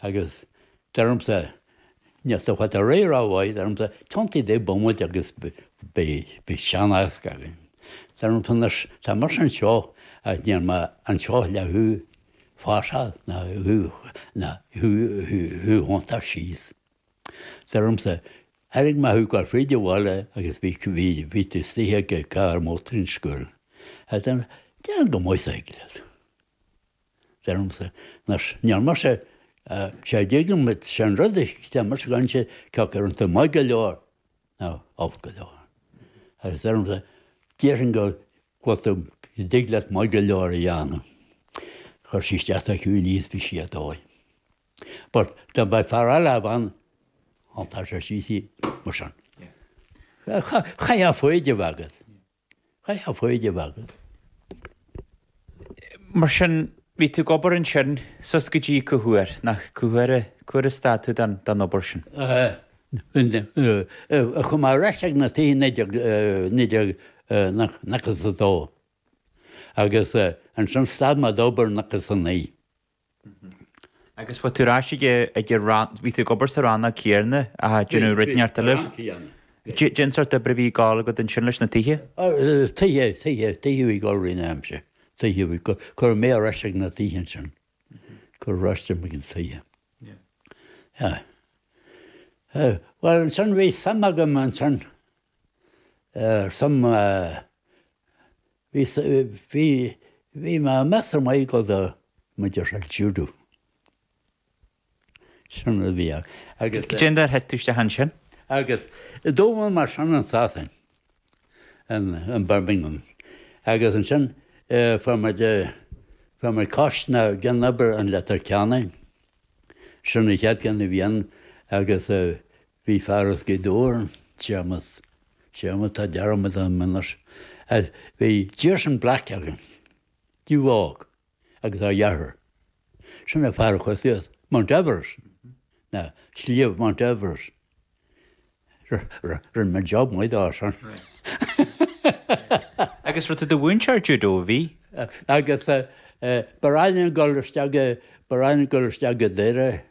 agus deirimse nach bhfuil tú ag fáil ar aghaidh rómhaith, deirimse tiontaigh do bhomaite agus beidh sean-aos againn, deirimse anois tá mise anseo agus níl mé anseo le thú a phasáil ná thú ná thú a thiontú síos, deirimse tharraing mé thú go bhfaighidh tú abhaile agus bhí bhí bhí tú istigh i gcarr mótar an scoil, ag déanamh go maith is a thig leat. deirimse, nach ndearna sé, sé a dtuigim, is é an rud a deirimse, gan sé ceoca iontu maith go leor ná olc go leor. Agus deirimse, déarfainn go bhfuil tú, go dtig leat maith go leor a dhéanamh. Chuir sí isteach sa chúinne í is bhí sí ar dóigh. But dá mbeadh fear eile a bheadh ann, thálfadh sé síos í mar sin. Caithfidh foighid a bheith agat. Caithfidh foighid a bheith agat. Mar sin, bhí tú ag obair ansin, suas go dtí cá huair, nach cá huair, cá huair a stad tú den den obair sin? Aye, chuaigh mé ar ais ag na tithe naoi déag, naoi déag nócha, nócha is a dó agus ansin stad mé d'obair nócha is a naoi. Agus bhí tú ar ais ag an rannóg, bhí tú ag obair sa rannóg céanna ag déanamh rud an tsórt a raibh. Cén sort oibre a bhí ag dul agat ansin leis na tithe? Tithe, tithe, tithe a bhí ag dul i rith an ama sin. Tithe a bhí, cuireadh mé ar ais ag na tithe ansin, cuireadh ar ais ag na tithe. Bhuel ansin bhí suim agam ansin ar some, Bhí bhí bhí mé measartha maith go deo, maith ar judo. Sin rud a bhí ann agus Caidé an dóigh ar thit tú isteach ansin? Agus d'fhoghlaim mé sin i Sasain in in Birmingham agus ansin fuair muid fuair muid cuid de na cinn ar bun i Leitir Ceanainn. Sin an chéad cheann a bhí ann agus Bhí fear as Gaoth Dobhair, Séamas, Séamas, tá dearmad orm anois, as, bhí Jason Black againn, New York, agus a athair, sin an fear a chuaigh suas Mount Everest, nó, Sliabh Mount Everest. Rinne mé job maith dó sin. Agus raibh tú i do mhúinteoir judo, bhí? Agus ba ghnách linn a ghoil isteach, ba ghnách linn a ghoil isteach go Doire.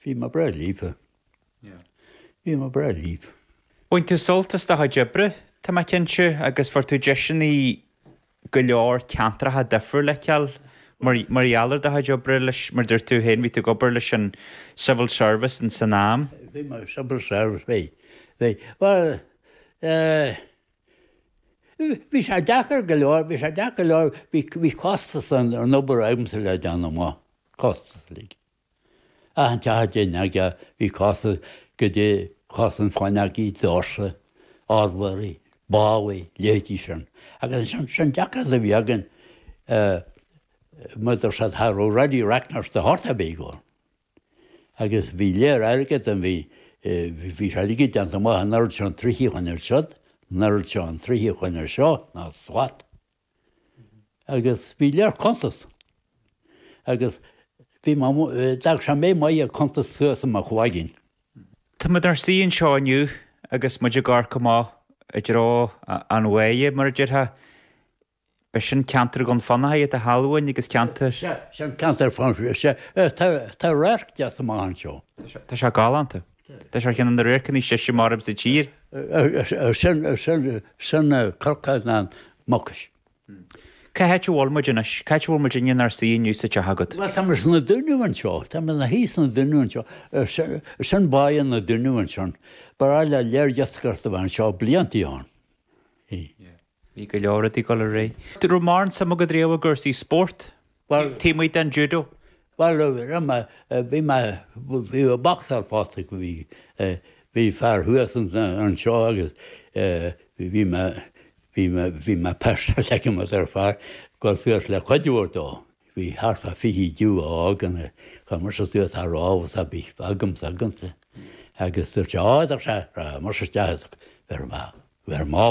Bhí mé breá líofa. Bhí mé breá líofa. Bhain tú sult as do chuid oibre, tá mé cinnte, agus fuair tú deiseannaí go leor ceantracha difriúla a fheiceáil mar gheall ar do chuid oibre leis, mar a dúirt tú féin, bhí tú ag obair leis an Civil Service in san am. Bhí mé ag Civil Service, bhí, bhí. Bhuel, eh, bhí sé deacair go leor, bhí sé deacair go leor, bhí, bhí costas an obair agamsa le déanamh, costas, like. Ach an teacht in aige bhí casadh go dtí cosaint Chloinn Acaidh, Dorset, Ardworthy, Bali, leithéidí sin. Agus ansin deacracht a bhí againn mar a déarfá cha raibh ready reckoner de shórt ar bith ag obair. Agus bhí lear airgead an bhí bhí sé uilig déanta amach an oiread seo troithe chun iad siud, an oiread seo troithe chun iad seo ná slat. agus bhí lear cuntas agus bhí mé d'fhág sé mé maith ag cuntas thuas i mo chloigeann. Tá muid inár suí anseo inniu agus muid ag amharc amach i dtreo an bhaile, mar a déarfá. Ab é sin ceantar Dhún Fionnachaidh a shamhlóinn agus ceantar. Sea, sin ceantar fanta. Sea, tá radharc deas amach anseo. Tá sé galánta. Tá sé ar cheann de na radharcanna is deise mar a bheadh sa tír. Sin Cnoc na Mucaise. Cá háit a bhfuil muid anois? Cá háit a bhfuil muid inniu inár suí inniu sa teach agat? Bhuel, tá muid sna Dúnaibh anseo. Tá muid inár suí sna Dúnaibh anseo. Sin Baile na Dúnaibh ansin. Baile lear iascaireachta a bhí anseo blianta ó shin. Bhí go leor ag dul ar aghaidh. An raibh mórán suim agat riamh i gcúrsaí spórt, taobh amuigh den judo? Bhuel, raibh mé, bhí mé, bhí mé ag bocsáil fosta, bhí, bhí fear thuas anseo agus bhí mé, bhí mé, bhí mé pósta aige mo dheirfiúr, chuir suas le cuid mhór dó. Bhí thart fá fiche judo a fhágann a, chuir mar seo suas thar lámh is a bhí agamsa, agamsa. Agus dúirt sé, á, dúirt sé, raghadh mar seo isteach is bheireadh mé, bheireadh mé.